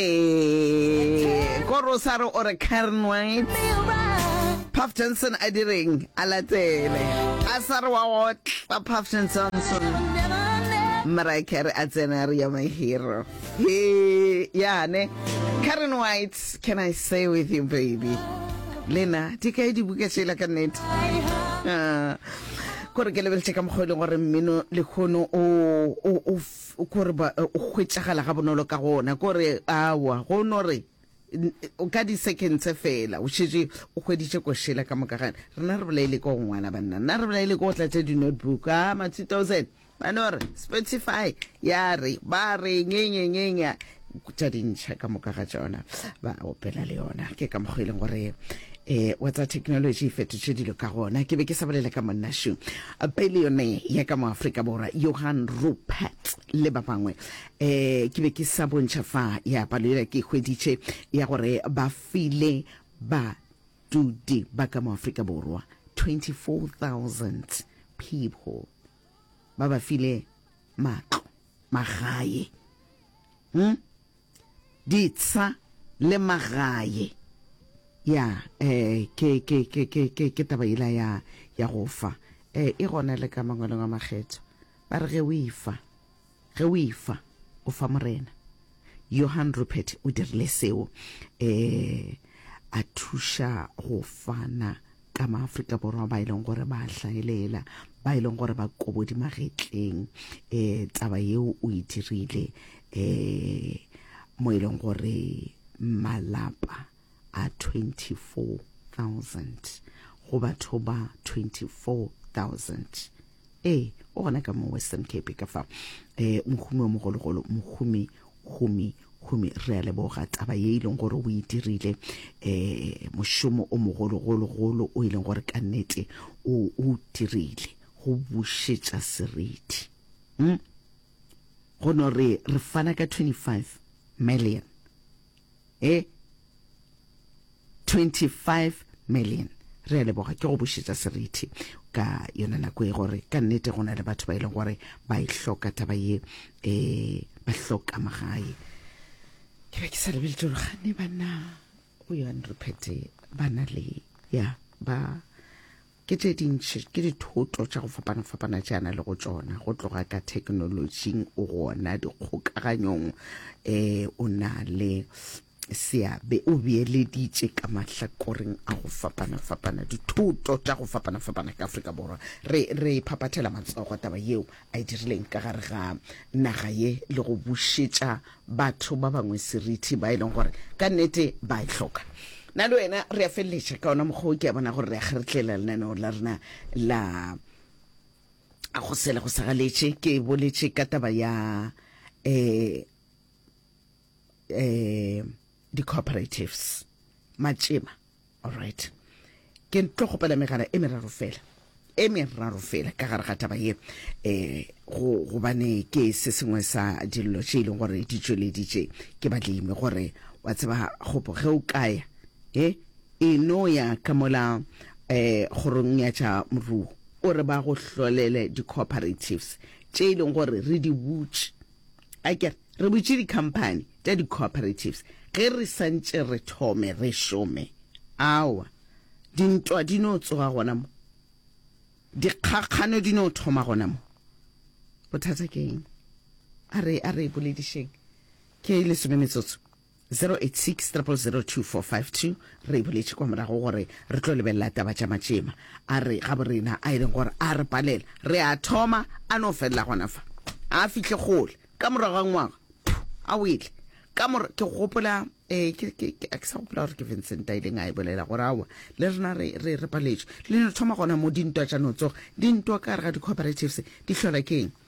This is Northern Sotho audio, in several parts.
Ee, ko Rosaro o re Karen White. Puff Johnson a direng a latele a sa re wa otla Puff Johnson Mariah Carey a tsena re ya my hero he yane Karen White can I say with you baby lena di kae dibuka tšela ka nnete Ah, kore ke lebeletše ka mokgwa e leng gore mmino lekgono o o- o gore ba eh, o hwetšagala ga bonolo ka gona kore awa go no re n- eh, o ka di-second tse fela o šetše o hweditše košela ka moka gane rena re bolaile ko go ngwala banna nna re bolaile ko go tlatša di-notebook a ma 2000 ba no re spotify ya re ba re nyenyenyenya tša dintšha ka moka ga tsona ba opela le yona ke ka mokgwa e leng gore um wa tsa technology e fetotše dilo ka gona ke be ke sa bolela ka monnašu peleone ya ka mo aforika borwa johan rupert le ba bangwe um ke be ke sa bontšha fa ya palo ela ke hweditše ya gore ba file badudi ba ka mo aforika borwa 24000 people ba ba file matlo Magaye. Hm? Ditsha le magaye. Ya, eh, ke, ke, ke, ke, ke, ke taba ila ya, ya go fa. Eh, e gona le ka mangwelong a makgetho. Ba re ge o ifa, ge o ifa, o fa Morena. Johann Rupert o dirile seo, e a thuša go fana ka maAfrika Borwa ba e leng gore ba hlaelela, ba e leng gore ba kobodi magetleng. E taba yeo o e dirile e mo e leng gore malapa a 24,000 go batho ba 24,000 ee o gona ka mo western cape ka fa um mohumi wa mogologolo mohumi humi humi re a leboga taba ye e leng gore o e dirile um mošomo o mogologologolo o e leng gore ka nnete o o dirile go bušetša seriti um go no re re fana ka 25 million e 25 million re a leboga ke go bušetša serithi ka yona nako e gore ka nnete go na le batho ba e leng gore ba e hloka taba ye um ba hloka magae ke be ke sa lebeletse gore gane banna go yone re phete ba na le ya ba Ke tše dintši, ke dithoto tša go fapana-fapana tše a na le go tšona, go tloga ka thekenolotšing o gona, dikgokaganyong, um o na le seabe o beeleditše ka mahlakoreng a go fapana-fapana dithoto tša go fapana-fapana ka Afrika Borwa re re phaphathela matsogo taba yeo a e dirileng ka gare ga naga ye le go bušetša batho ba bangwe seriti ba e leng gore ka nnete ba e hloka na le wena re a feleletša ka ona mokgwa o ke a bona gore re a kgeretlela lenaneo la rena la a go sele go sagaletše ke boletše ka taba ya um um di-cooperatives matšema Alright. Ke tlo kgopela megala e meraro fela. E meraro fela ka gare ga taba ye. Eh go gobane ke se sengwe sa dillo tše ile gore di tšweleditše ke badlimi gore wa tseba gopo ge o kaya eh e no ya ka mola eh gorong ya tša moruo o re ba go hlolele di cooperatives tše ile gore re di butše A ke re, re butše dikhamphani tša di-cooperatives ge re sa ntše re thome re šome? Aowa. Dintwa di no tsoga gona mo. Dikgakgano di no thoma gona mo. Bothata ke eng? A re, a re boledišeng. Ke lesome metsotso. 086 000 2452 Re e boletše kwa morago gore re tlo lebelela taba tša matšema a re gaborena a e leng gore a re palela re a thoma a no felela gona fa a fihle kgole ka morago ga ngwaga a wele ka mora ke gopola eh, ke sa gopola gore ke vincent a ileng a e bolela gore awa le rena re paletšwe le no thoma gona mo dintwa tša no tsoga dintwa ka re ga di-cooperatives di tlhola ke eng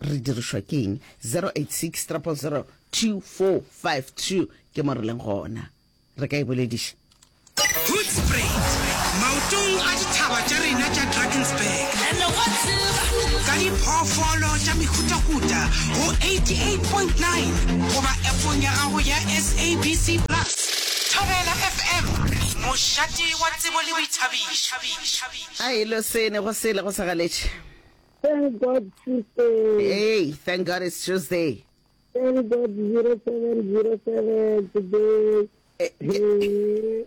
Re dirišwa ke eng? 0860002452 ke mo re leng gona. Re ka e bolediša. Hoedspruit, maotong a dithaba tša rena tša Drakensberg, ka diphoofolo tša mehutahuta go 88.9 goba appong ya gago ya SABC Plus. Thobela FM, mošate wa tsebo le boithabišo. A e lo sene go sele go sa galetše. Thank God Tuesday. Hey, thank God it's Tuesday. Thank God 0707 today. Eh, eh.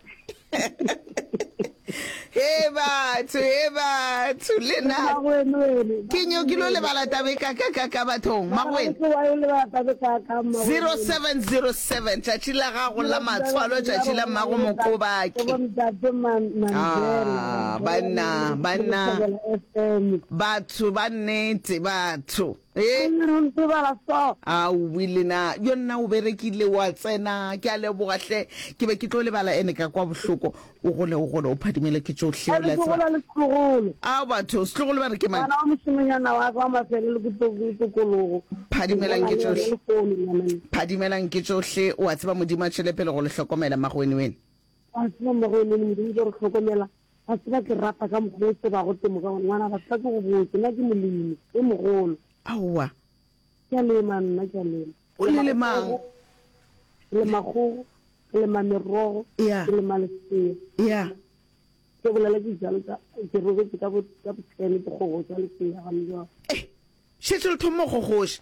he batho he batho le na ke nyo ke lo lebala tabe kakakaka bathong magwene 0707 tšatši la gago la matshwalo tšatši la mmago mokobake ah, banna banna Amen. Batho ba nnete, batho. Ee. Ke le rutse bala so. Aowi le na, bjo nna o berekile wa tsena. Ke a leboga hle. Ke be ke tlo lebala ene ka kwa bohloko. O gole, o gole, o phadimele ke tšohle. Ene ke gola le setlogolo. Ao batho, setlogolo ba re ke mang? Ngwana wa mošemonyana wa ka wa mafele le kutokologo. Phadimelang ke tšohle. Phadimelang ke tšohle. O a tseba Modimo a tšwele pele go le hlokomela, Mmagwene wene. Wa tseba Mmagwene wene, Modimo ke re hlokomela. Wa tseba ke rapa ka mokgwa o tsebago temo ka gona. Ngwana batho ba ke go botse, nna ke molemi e mogolo. Aowa. Ke a lema nna, ke a lema. O le lemang? Ke lema kgogo, ke lema merogo, ke lema lesea. Ya. Ke bolela ke jalo ka ke robetse ka bo ka bo ten ke gogosa lesea ga mjalo. Eh, šetše le thoma go gogoša.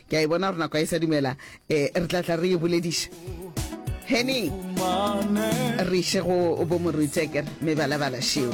Ke a e bona gore nako a e sa dumela, e, re tla tla re yo bolediša. Henny, re iše go bo Moruti, a kere, mebalabala šeo.